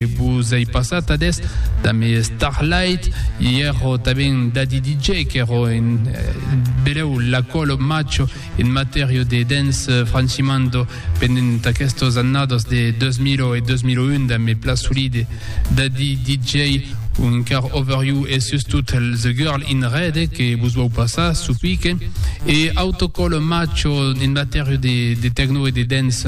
E pus ei passat ad est damb es Starlight, i ero tanben Daddy DJ, qu'ero en beleu l'acolo macho en matèrio de dance francimando pendent aquestos annados de 2000 e 2001 damb me pla solide Daddy DJ o encara Over You e sustot The Girl in Red que vos vau passar çò pique e autocolo macho en matèrio de tecno e de dance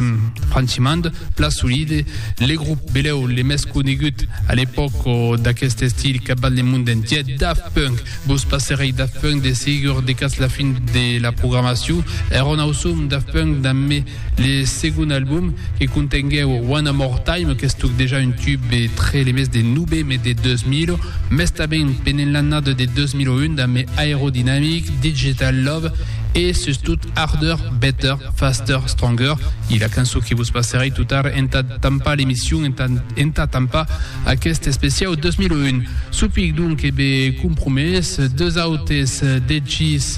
francimando. Pla solide, le grop beleu le mès conegut a l'epòc d'aqueste estil capdant le mond entièr, Daft Punk. Vos passerèi Daft Punk de segur decatz la fin de la programacion. Èra un ausum Daft Punk dambe le segon album que contenguèu One More Time qu'estuc dejà un tube entre le mes de noveme de 2000 mès tanben pendent l'annada de 2001 dambe Aerodynamic, Digital Love e sustot Harder, Better, Faster, Stronger e la cançon que vos passerei tot ara entà tampar l'emission, entà, entà tampar aquest especiau 2001. Supic donc e be compromés, deus autes dechis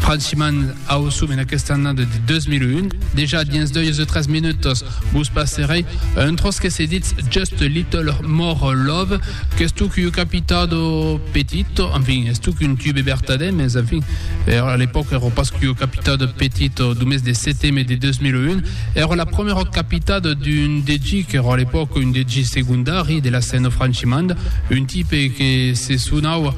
franchiment ausum en aquesta annada de 2001, dejà dins 2 e 3 minutos, Vos passerè un tròç que se ditz Just a Little More Love, qu'es tuc ua capitada petita, enfin, es tuc un tube vertadèr, mès enfin, era a l'epòca èra pas qu'ua capitada petita, du mes de seteme de 2001, èra la prumèra capitada d'un DJ qu'èra a l'epòca un DJ segondari de la scèna francimanda, un tipe que se sonava.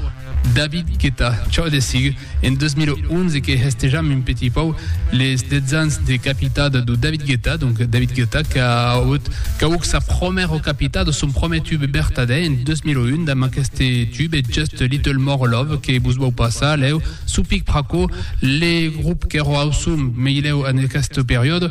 David Guetta, Chò de sigue en 2011 que hestejam un petit pauc les 10 ans de capitada de David Guetta, donc David Guetta qu'a auut qu'auc sa promèra capitada, son promèr tube bertadèr en 2001 damb aqueste tube Just Little More Love que vos vau passar lèu sou pic pr'aquò le grup qu'èra ausum meilèu en aqueste periòde.